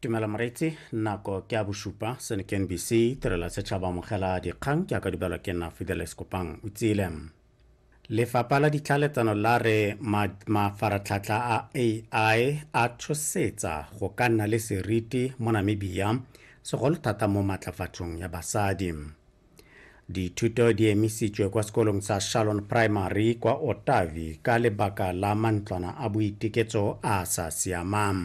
tumelo moreetsi nako ke a bosupa sene ke nbc tirelo ya setšhaba amogela dikgang ke a ka dubelwa ke nna fideles kopang o tsile lefapha la ditlhaletsano la re mafaratlhatlha a ai a tshosetsa go ka nna le seriti mo namibia segolo thata mo maatlafatsong ya basadi Dithuto di emisitswe kwa sekolong sa Shalon Primary kwa Otavi ka lebaka la mantlwana a boiteketso a a sa siamang.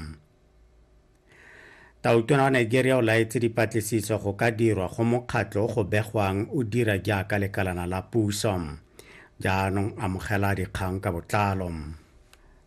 Tautona wa Nigeria o laetse dipatlisiso go ka dirwa go mokgatlho go begwang o dira jaaka lekalana la puso. Jaanong amogela dikgang ka botlalo.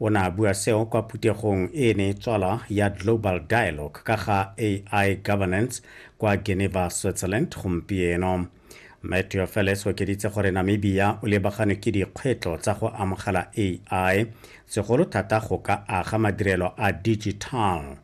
o ne a bua seo kwa phuthegong e e ne e tswalwa ya global dialogue ka ga ai governance kwa geneva switzerland gompieno mme teofeles o okeditse gore namibia o lebagane ke dikgwetlho tsa go amogela ai segolo thata go ka aga madirelo a digital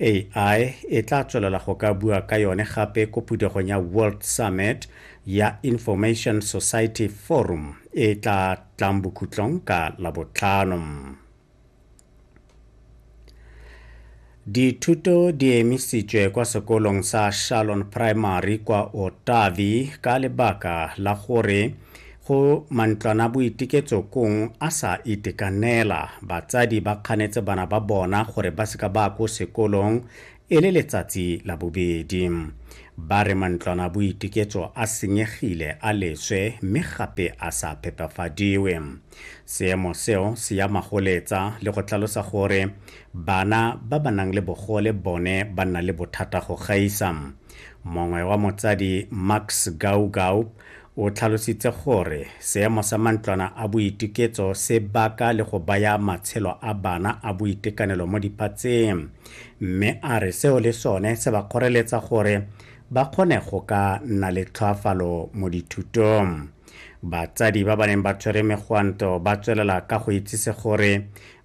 AI e tla tswelela go ka bua ka yone gape ko phuthegong ya World Summit ya Information Society Forum e tla tlang bokhutlong ka Labotlhano. Dithuto di emisitswe kwa sekolong sa Shalon Primary kwa Otavi ka lebaka la gore Go mantlwanaboitiketsokong a sa itekanela, batsadi ba kganetse bana ba bona gore ba seka ba ko sekolong e le letsatsi la bobedi. Ba re mantlwanaboitiketso a senyegile a leswe mme gape a sa phepafadiwe. Seemo seo se ya magoletsa le go tlalosa gore bana ba ba nang le bogole bone ba nna le bothata go gaisa. Mongwe wa motsadi Max Gaugau O tlhalositse gore seemo sa mantlwana a boituketso se baka le go baya matshelo a bana a boitekanelo mo diphatseng, mme a re seo le sone se ba kgoreletsa gore ba kgone go ka nna le tlhoafalo mo dithutong. Batsadi ba ba neng ba tshwere megwanto ba tswelela ka go itsise gore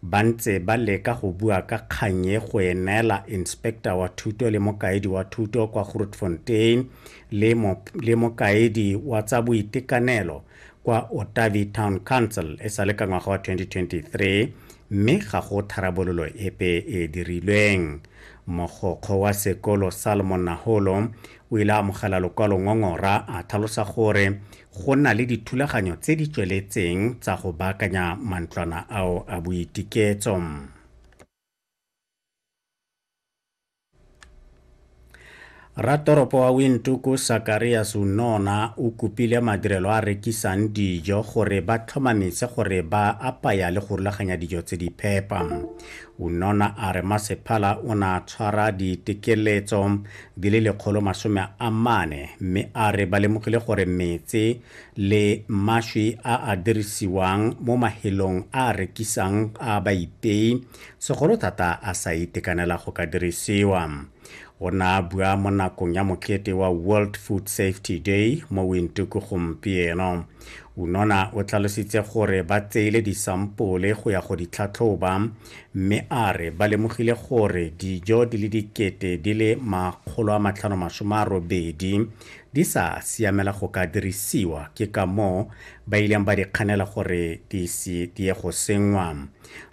ba ntse ba leka go bua ka kgang e go e neela inspector wa thuto le mokaedi wa thuto kwa Grootfontein, le, mo, le mokaedi wa tsa boitekanelo kwa otavi town council e sa le ka ngwaga wa 2023 mme ga go tharabololo epe e dirilweng mogokgo wa sekolo salomon naholo o ile a amogela lokwalo ngongora a tlhalosa gore go na le dithulaganyo tse di tsweletseng tsa go baakanya mantlwana ao a boitiketso Ratoropo wa Windhoek Sakarias Unona o kopile madirelo a rekisang dijo gore ba tlhomamise gore ba apaya le go rulaganya dijo tse di phepa. Unona a re masephala o na tshwara ditekeletso di le lekgolo masome a mane mme a re ba lemogile gore metse le mashwi a a dirisiwang mo mahelong a rekisang a baipei segolo thata a sa itekanela go ka dirisiwa. O ne a bua mo nakong ya mokete wa World Food Safety Day mo Windhoek gompieno. Unona o tlhalositse gore ba tseile disampole go ya go di tlhatlhoba mme a re ba lemogile gore dijo di le dikete di le makgolo a matlhano masome a robedi di sa siamela go ka dirisiwa ke ka moo ba ileng ba di kganela gore di se di ye go senngwa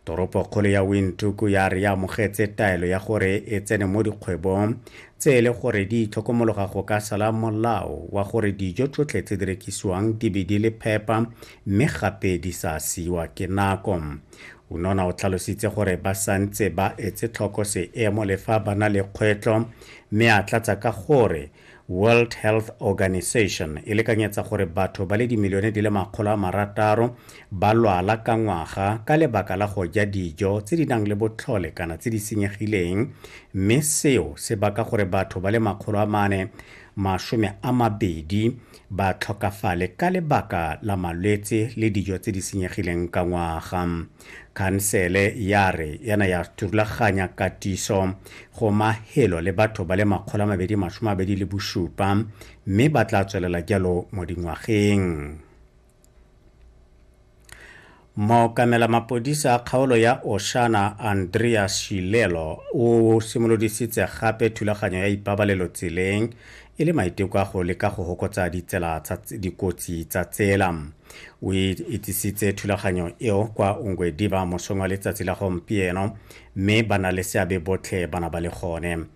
Toropokgolo ya Windhoek ya re ya amogetse taelo ya gore e tsene mo dikgwebong tse e le gore di itlhokomologa go ka sala molao wa gore dijo tsotlhe tse di rekisiwang di be di le phepa mme gape di sa siwa ke nako. Unona o tlhalositse gore ba santse ba etse tlhoko seemo le fa ba na le kgwetlho mme a tlatsa ka gore World Health Organization e lekanyetsa gore batho ba le dimilione di le makgolo a marataro ba lwala ka ngwaga ka lebaka la go ja dijo tse di nang le botlhole kana tse di senyegileng mme seo se baka gore batho ba le makgolo a mane masome a mabedi ba tlhokafale ka lebaka la malwetse le dijo tse di senyegileng ka ngwaga khansele ya re yana ya turulaganya katiso go mahelo le batho ba le makgolo a mabedi masome mabedi le bosupa mme ba tla tswelela jalo mo dingwageng mookamela mapodisa a kgaolo ya oshana andrea shilelo o simolodisitse gape thulaganyo ya ipabalelo tseleng e le maiteko a go leka go hokotsa ditsela tsa dikotsi tsa tsela o e itsisitse thulaganyo eo kwa ongwediba mosong wa letsatsi la gompieno mme ba na le seabe botlhe bana ba le gone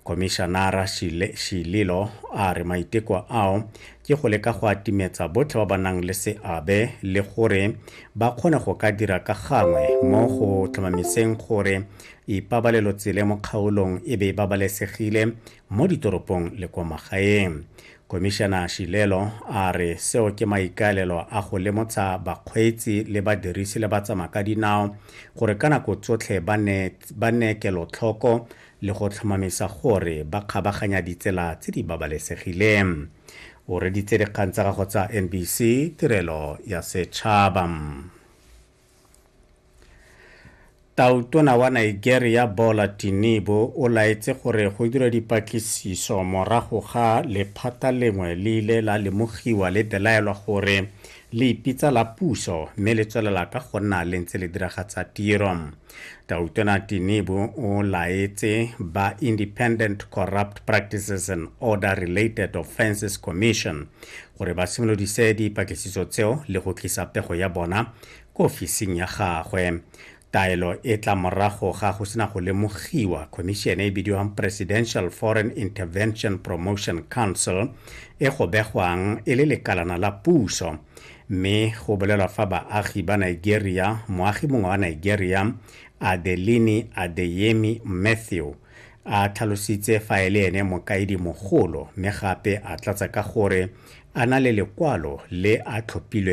komishanara shililo a re maiteko ao ke go leka go atimetsa botlhe ba ba nang le seabe le gore ba kgone go ka dira ka gangwe mo go tlhomamiseng gore ipabalelo tsele mo kgaolong e be e babalesegile mo ditoropong le kwa magaeng. Komišana Shilelo a re seo ke maikaelelo a go lemotsha bakgweetsi le badirisi le batsamaka dinao gore ka nako tsotlhe ba ne kelotlhoko le go tlhomamisa gore ba kgabaganya ditsela tse di babalesegileng. O reditse dikgang tsa gago tsa NBC Tirelo ya Setšhaba. tautona wa nigeria bola tinibo o laetse gore go dira dipatlisiso morago ga lephata lengwe le ile la lemogiwa le belaelwa gore le ipitsa la puso mme le tswelela ka go nna le ntse le diragatsa tiro tautona tinibo o laetse ba independent corrupt practices and order related offenses commission gore ba simolodise dipatlisiso tseo le go tlisa pego ya bona ko ofising ya gagwe taelo e tla morago ga go sena go lemogiwa khomišene e bidiwang presidential foreign intervention promotion council e go begwang e le lekalana la puso mme go bolelwa fa baagi ba nigeria moagi mongwe wa nigeria adelini adeyemi matthew A tlhalositse fa e le ene mokaedi mogolo mme gape a tlatsa ka gore a na le lekwalo le a tlhophilweng